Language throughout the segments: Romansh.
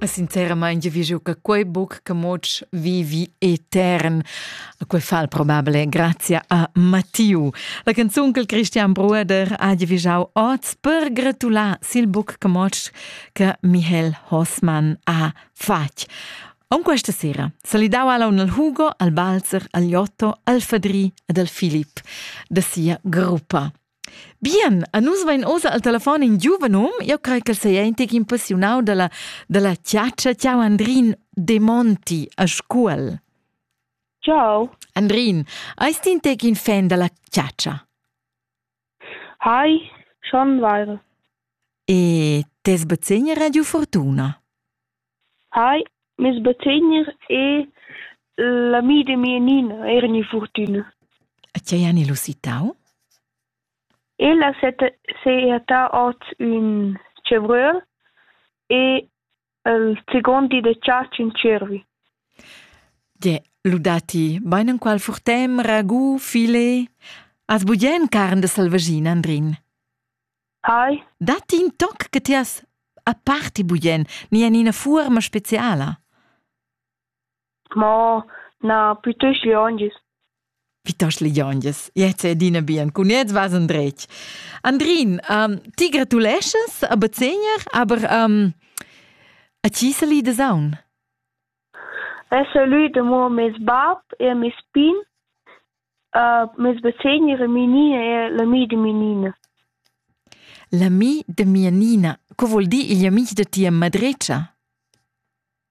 Sinceramain vi giu che quei buc che moc vivi etern. Quei fa probabile grazie a Mattiu. La canzun che Christian Brueder ha vigiau oz per gratular sil buc che moc che Michael Hossmann ha fatg. On questa sera salidau alla un al Hugo, al Balzer, al Jotto, al Fadri ed al Filip da sia gruppa. Bien, a nus vain ossa al telefon in giuven um, io crei ch'el seia in tec impressionau dalla, dalla chatscha. Ciao Andrin De Monti a Scuol. Ciao. Andrin, eis ti in tec in fan dalla chatscha? Hai, schon weire. E tes bezegner Radio Fortuna? Ei, mes bategner e l'amida mia Nina eran in furtüna. E tgei han els usitau? El ha seiertà oz ün tschevröl e il second di da chatsch ün tschiervi. Ge, ludà ti bain enqual furtem, ragu, filet? Has bugen carn da selvaschina, Andrin? Hi. Datti in toc che ti has aparti bugen ni en ina fuorma speciala? Mo na, piuttosto lionges. Piuttosto lionges. Jetzt è adina bien. Cun jetzt vas endretg. Andrin, um, ti gratuleschas a Bazegner, aber um, a chi sali da saun? Hai salü damo meis bap e a meis pin. Meis basegn era Menina e l'ami da Menina. L'ami da mia Nina, co voul dir igl amis da tia madretscha?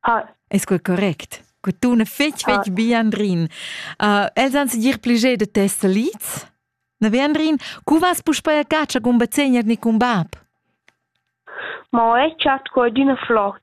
Ah. Es quel correct? Que tuna fetg, fetg ah. bi, Andrin. Uh, els han dir pliger da tes salids? Na ve, Andrin, cu vas puspei a caccia cun bazegner ni cun bab? Ma ho chat co d'üna flot.